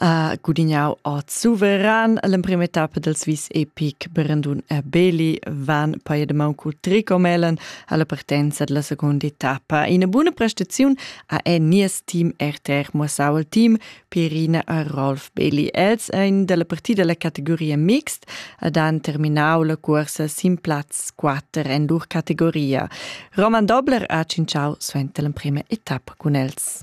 uh, gudignau a suveran l'emprima tappa del Swiss Epic Brandon e Beli van poi de mancu tricomelen alla partenza della seconda tappa. Ina buona prestazione a è nies team RTR Mossau il team Pirina a Rolf Beli. Els ein della partida della categoria mixed ad han terminau la corsa sin platz 4 en lur categoria. Roman Dobler ha cinciau suenter l'emprima etappa con els.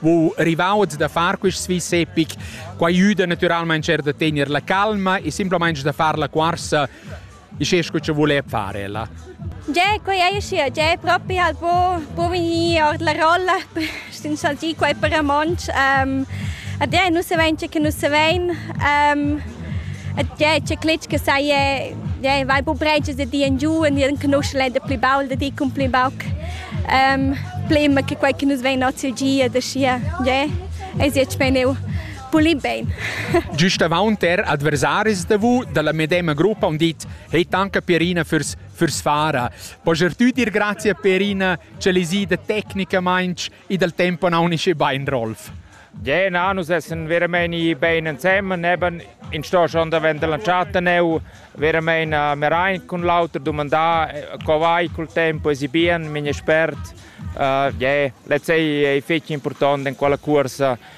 wo rivauds da far quist svis epic. Qua aiuda naturalmaing er da tener la calma e simplamaing da far la cuorsa e sche scu che vole fare ella. Già, quei è sia, già proprio al po, po venire ord la rolla, sin saltì quei per amonch. Um, a te non se vence che non se ven. Um, E tgè, tge cletg che sai è, ja, vai bu breigias da di en giu e ni en canuscel è da pli baul da di cun pli bauc. Um, plimma che quei che nus vein ozi gia da scia, ja, es jetzt beneu pulì bene. Giust avaunt er adversaris da vu dalla medema gruppa han dit hey tanca Pierina fürs fürs fara. Poger tü dir grazie Pierina, ce lisi da tecnicamainch I dal tempo non unisce bain Rolf. Gena, nus essen veramein i bein ensemen, neben in sto schon davent la chatta neu, veramein uh, mir ein cun l'auter domandà eh, co vai col tempo esibien, min espert. Uh, yeah, let's say è fetch important in quella cursa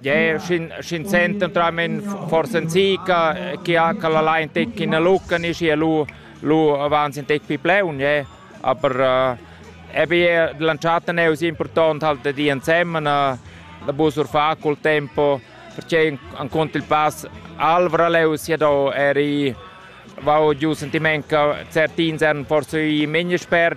Yeah, schin schin senten tramen forsa zica che ha che la line tec in a lucca ni schi lu lu avanzi tec pi pleun, yeah. Aber äh, eben lanciata ne es important halt da di ensemen da busur fa col tempo perché an cont il pass Alvra leus ja do eri vau giù sentiment che certi insen forse i meni spert